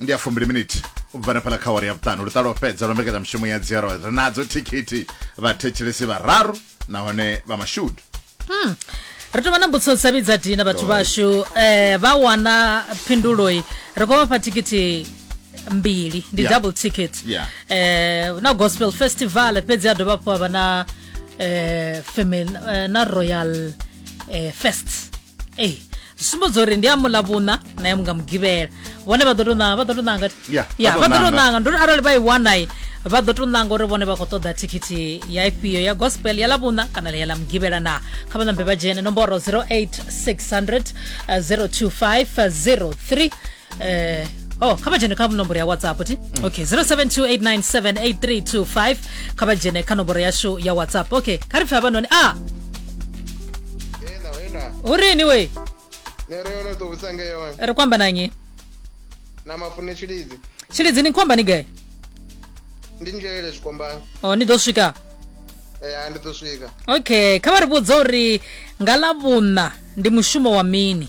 ndi ya fumbili miniti u bva nefhala kha wari ya vhuṱanu luṱa lwo fhedza lwa mbekanyamushumo ya dzero ri nadzo thikhithi vhathetshelesi vhararu nahone vha mashudu hmm. ri tovha na mbudziso dza vhidza dina vhathu vhashu um eh, vha wana phinduloi ri khou vhafha thikhithi mbili ndi yeah. double ticket yeah. eh, na gospel festival fhedzi a dovha hafhu avha na eh, family eh, na royal eh, fest ei zwi sumbedza uri ndi a mula vhuṋa na ya munga mugivhela vhone vha ḓo to ṋanga vha ḓo to ṋanga Ya, ya vha vha ḓo ḓo to ṋanga. ṋanga nduri arali vha i wanai vha ḓo to ṋanga uri vhone vha khou ṱoḓa thikhithi ya ifhio ya gospel ya ḽavhuṋa kana ya ḽa mugivhela na kha vha ṋambe vha dzhene nomboro 08600 025 03 eh oh kha vha dzhene kha nomboro ya whatsapp ti mm. okay 0728978325 kha vha dzhene kha nomboro yashu ya whatsapp okay kha ri pfe havhanoni a ah! u rini we ri kwamba na nyi na mafune tshilidzi tshilidzi ni kwamba ni gai ndi ngelele zwikombani o oh, ni ḓo swika ya ndi ḓo swika okay kha vha ri vhudza uri nga ḽa vhuṋa ndi mushumo wa mini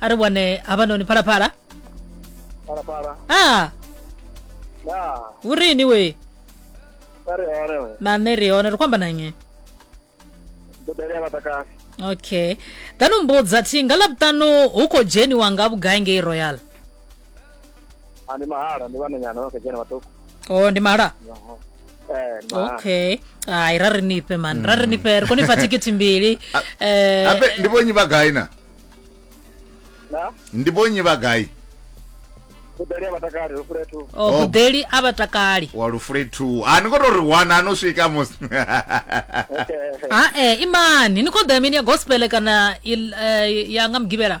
ari wane a vha noni phalaphala phalaphala a na hu ri ini we a ri hone we na nṋe ri hone ri khou amba na nnyi mbudele ya vhatakasi okay ḓa no mbudza thi nga ḽavhuṱanu hu khou dzheniwa nga vhugai ngei royal Ah, ndi mahala ndi vhananyana vha kha dzhena vhaṱuku o ndi mala eh ndi mahala okay ai ra ri nifhe mani ra ri nifhe ri kone fa thikhithi mbili Eh, ape ndi vhonyi vha gai na na ndi vhonyi vha gai kudali ya vhatakali ro fule thu o gudeli a vha takali wa lufule 2 a ni ngo to ri wana ano swika mos okay a e imani ni khou ḓa mini ya gospel kana il- eh, ya nga mugivhela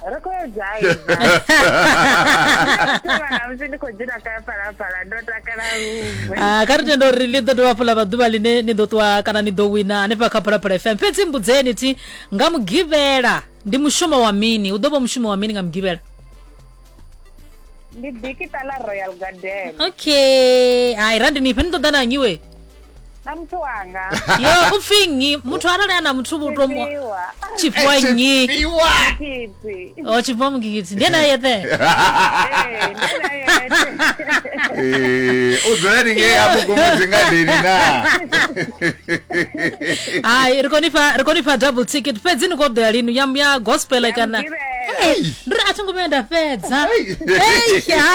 ri khou edzaivana musi ndi khou dzula ka palapala ndo takala luṅwe Ah, kha ri tenda uri ḽi ḓo dovha fula vhaḓuvha ḽine ni ḓo ṱuwa kana ni ḓo wina hanefha kha phalaphala fm fhedzi mbudzeni thi nga mugivhela ndi mushumo wa mini u ḓo vha mushumo wa mini nga mugivhela ndi bikita ḽa royal garden okay hai randi nifhe ni ṱoḓa na nyiwe na muthu wanga yo u pfi nnyi muthu arali a na muthu vhutomo Tshifhiwa. tshifhiwa nnyi Tshifhiwa. Kiti. o tshifhiwa mugigidzi ndi ene a yeṱhe Eh, ndi na yete. Eh, u dzula ni ngei afho kumudzi ngadeni na hayi ri koni fha ri koni fha double ticket fhedzi ni kho ḓo ya lini ya ya gospel kana Ngivhela. Hey. ndi ri a thi ngo vhuya nda fhedza Hey. Eish, ha.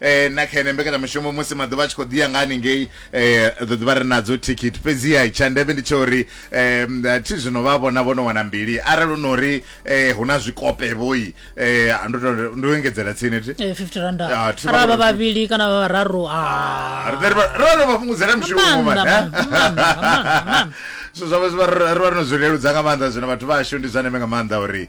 eh, na kha ene mbekanyamushumo musi maḓuvha a tshi khou ḓiya nga haningei eh, ḓo ḓivha ri nadzo thikhithi fhedziha tsha ndeme ndi tsha uri eh, thi zwino vha vhona vho no wana mbili arali u no ri eh, hu na zwikope vhoi eh, ndo to- ndo engedzela tsini thi Eh, 50 randa Ah, thi arali vha vha- vhavhili kana vha vhararu ah. Ri ḓe ri vha- ro no vha fhungudzela mishumo Maanḓa, mani, eh? maanḓa, maanḓa, maanḓa, maanḓa. so zwa vha zwi vha- ri vha ri no zwi leludza nga maanḓa zwino vhathu vhashu ndi zwa ndeme nga maanḓa uri